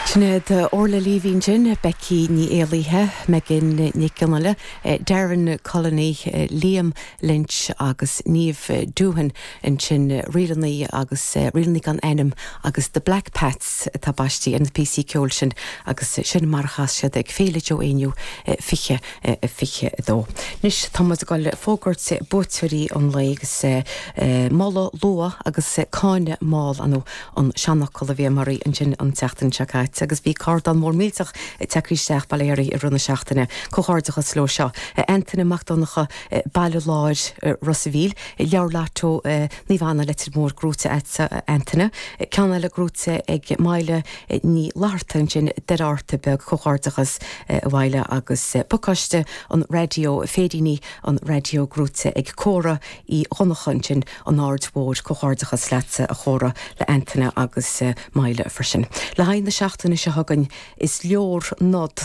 Sin iad Orla Leavy ansin, Becky Ní Éallaithe, Megan Nic Fhionnghaile, Darren Culliney, Liam Lynch agus Niamh Doohan, ansin ríleanna agus ríleanna gan ainm agus The Black Pats atá baistí ar na píosaí ceoil sin agus sin mar a chas siad ag Féile Joe Éinniú 20 22. Anois tá muid ag dul le fógairt buaiteoirí an lae agus moladh luath agus cáineadh mall ar ndóigh an seanfhocal a bhí muid ag iarraidh ansin an tseachtain seo caite agus bhí carnán mór millteach tagtha isteach bail ó Dhia oraibh i rith na seachtaine. Comhghairdeachas leo seo. Antaine Mac Donncha, Baile Láir, Ros a' Mhíl. Leabhar Lotto, Naomh Anna, Leitir Móir, gnóite agatsa a Antaine. Ceann eile gnóite ag Maile Ní Fhlatharta ansin Doire Fhatharta Beag comhghairdeachas a Mhaile agus pacáiste an raidió, féiríní an raidió gnóite ag Córa Uí Dhonnacha ansin an Aird Thoir comhghairdeachas leatsa a Chóra, le Antaine agus Maile freisin. Le haghaidh na seachtaine seo chugainn is leor nod,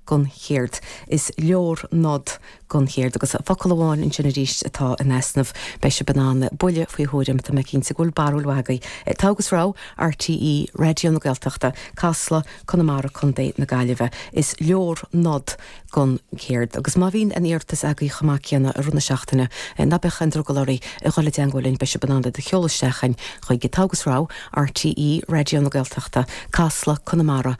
don chéard. Is leor nod don chéard agus focal amháin ansin arís atá in easnamh. Beidh sibh in ann buille faoi thuairim tá mé cinnte go bhfuil barúil mhaith agaibh. Togha agus Rogha, RTÉ Raidió na Gaeltachta, Casla, Conamara, Co na Gaillimhe. Is leor nod don chéard. Agus má bhíonn aon iarratas agaibh chomh maith céanna i rith na seachtaine, ná bíodh aon drogall oraibh dhul i dteangmháil linn, beidh sibh in ann iad a sheoladh isteach chugainn chuig Togha agus Rogha. RTÉ Raidió na Gaeltachta, Casla, Conamara,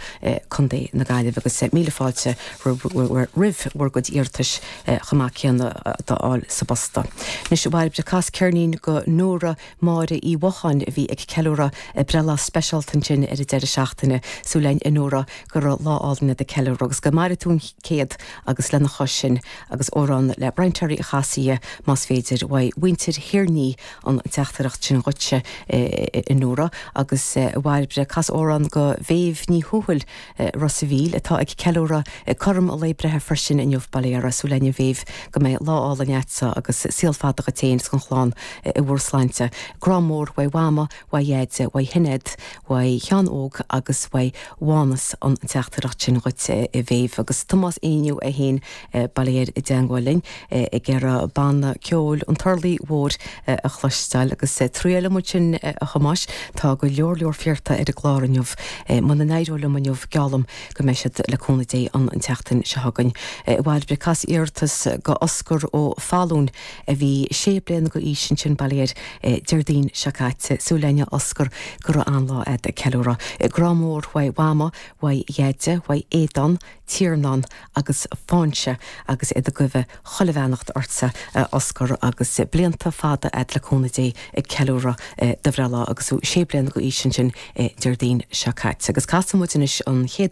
Co. na Gaillimhe agus míle fáilte roimh bhur gcuid iarratais chomh maith céanna d'fháil sa bpost. Anois, a Bhairbre, cas ceirnín go Nóra Máire Uí Mhocháin a bhí ag ceiliúradh breithlá speisialta ansin ar an deireadh seachtaine. Súil againn, a Nóra, go raibh lá álainn agat ag ceiliúradh agus go maire tú an céad agus lena chois sin agus amhrán le Brian Terry a chasadh más féidir, uaidh mhuintir Thiarnaí an teachtaireacht sin dhuit-se, a Nóra, agus a Bhairbre, cas amhrán go Mhéabh Ní Thuathail, Ros a' Mhíl, atá ag ceiliúradh cothrom a lae breithe freisin inniu. Bail uirthi. Súil againn a Mhéabh go mbeidh lá álainn a'dsa agus saol fada dhuit fhéin is gon chlann i bhur sláinte. Grá mór uaidh Mhama, uaidh Dheaide, uaidh Shinéad, uaidh Sheán Óg agus uaidh Mhánas an teachtaireacht sin dhuit, a Mhéabh, agus Tomás Éinniú é fhéin Bail air i dteagmháil linn ag iarraidh banna ceoil an Turlaigh Mhóir a chloisteáil agus triailfidh muid sin, a Thomáis, tá go leor leor iarrtha ar an gclár inniu. Muna n-éireoidh liom inniu, geallaim go mbeidh siad, le cúnamh Dé, ann an tseachtain seo chugainn. A Bhairbre, cas iarratas go Oscar Ó Fallúin a bhí sé bliana go aois ansin, bail air, Déardaoin seo caite. Súil againn, a Oscar, go raibh an-lá agat ag ceiliúradh. Grá mór uaidh Mhama, uaidh Dheaide, uaidh Aodán, Tiarnán agus Foinse agus iad ag guibhe chuile bheannacht ortsa a Osgur agus blianta fada ad le cúnamh Dé ag ceiliúradh do bhreithlá agus thú sé bliana go d'aois ansin Déardaoin seo caite agus casann muid anois an chéad